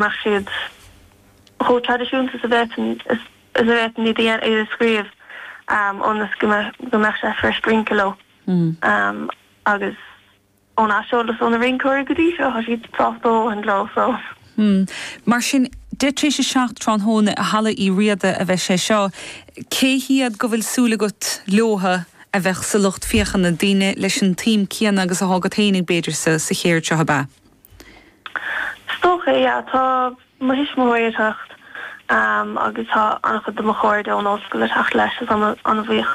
mbeadh siad chomh traidisiúnta is a bhféadfainn is a bhféadfainn iad a iad a scríobh ionas go go mbeadh sé fuirist rince leo agus ón aiseolas ó na rinceoirí go dtí seo tá siad sách tógtha leo so. Mar sin deich tar éis a seacht tráthnóna i Halla Uí Riada a bheidh sé seo, cé hiad go bhfuil súil agat leotha a bheidh sa lucht féachana, daoine leis an tsuim céanna agus atá agat féinig b'fhéidir sa sa cheird seo, ab ea? Is dócha é, yeah. Tá mo thuismitheoirí ag teacht agus tá an-chuid de mo chairde ón ollscoil ag teacht leis agus tá mé an-bhuíoch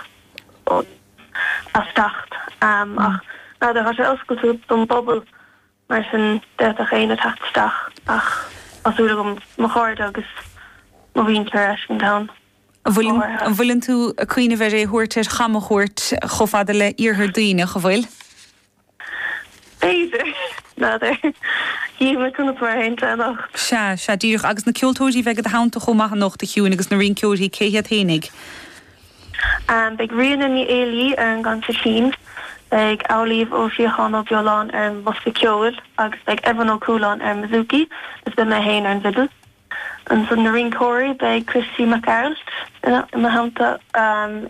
as teacht. Ach n'fheadar, tá sé oscailte don bpobal mar sin d'fhéadfadh éinne teacht isteach ach tá súil agam mo chairde agus mo mhuintir a fheiscint ann go háirithe. An bhfuileann tú ag cuimhneamh ar é thabhairt, ar chamchuairt chomh fada le Iarthar Duibhneach, an bhfuil? B'fhéidir. N'fheadar. Chífimid conas mar a théann sé anocht. Sea, sea, díreach. Agus na ceoltóirí a bheidh i do theannta chomh maith anocht, a Shiúin, agus na rinceoirí, cé hiad fhéinig? Beidh Ríona Ní Éilí ar an gconsairtín, beidh Amhlaoibh Ó Síocháin Ó Beoláin ar an mbosca ceoil agus beidh Evan Ó Cualáin ar an mbouzouki agus beidh mé féin ar an bhfidil. Ansan na rinceoirí, beidh Christy Mac Gearailt im theannta,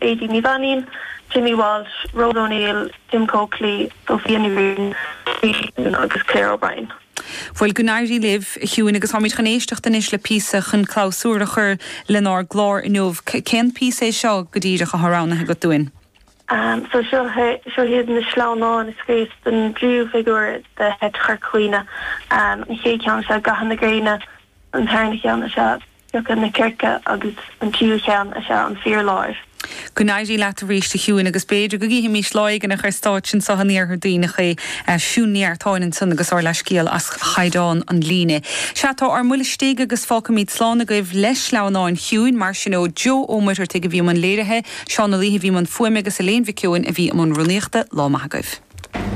Aedín Ní Mhainín, Jimmy Walsh, Rhoda O'Neill, Jim Coakley, Sophia Ní Bhriain, Lee Sheehan agus Claire O'Brien. Bhuel, go n-éirí libh, a Shiúin, agus táimid chun éisteacht anois le píosa chun clabhsúr a chur lenár gclár inniu. Cén píosa é seo go díreach atá roghnaithe agat dúinn? So seo hé, seo hiad na sleamhnáin a scríobhas don dtríú figiúr de sheit Chorca Dhuibhne. An chéad cheann is ea Gaethe na Gréine, an tarna cheann is ea Piocadh na Circe agus an tríú cheann is ea An Fíorláir. Go n-éirí leat arís a Shiúin agus b'fhéidir go gcífimís lá éigin ar stáitse anso in Iarthar Duibhneach é Siún Ní Eartáin ansan agus ár leathscéal as chaighdeán an líne. Sea, tá ár mbuille istigh agus fágfaimid slán agaibh le sleamhnáin Shiúin mar sin ó Joe Ó Muircheartaigh a bhí i mbun léirithe, Seán Ó Laoithe a bhí i mbun fuaime agus Elaine Mhic Eoin a bhí i mbun rúnaíochta. Lá maith agaibh.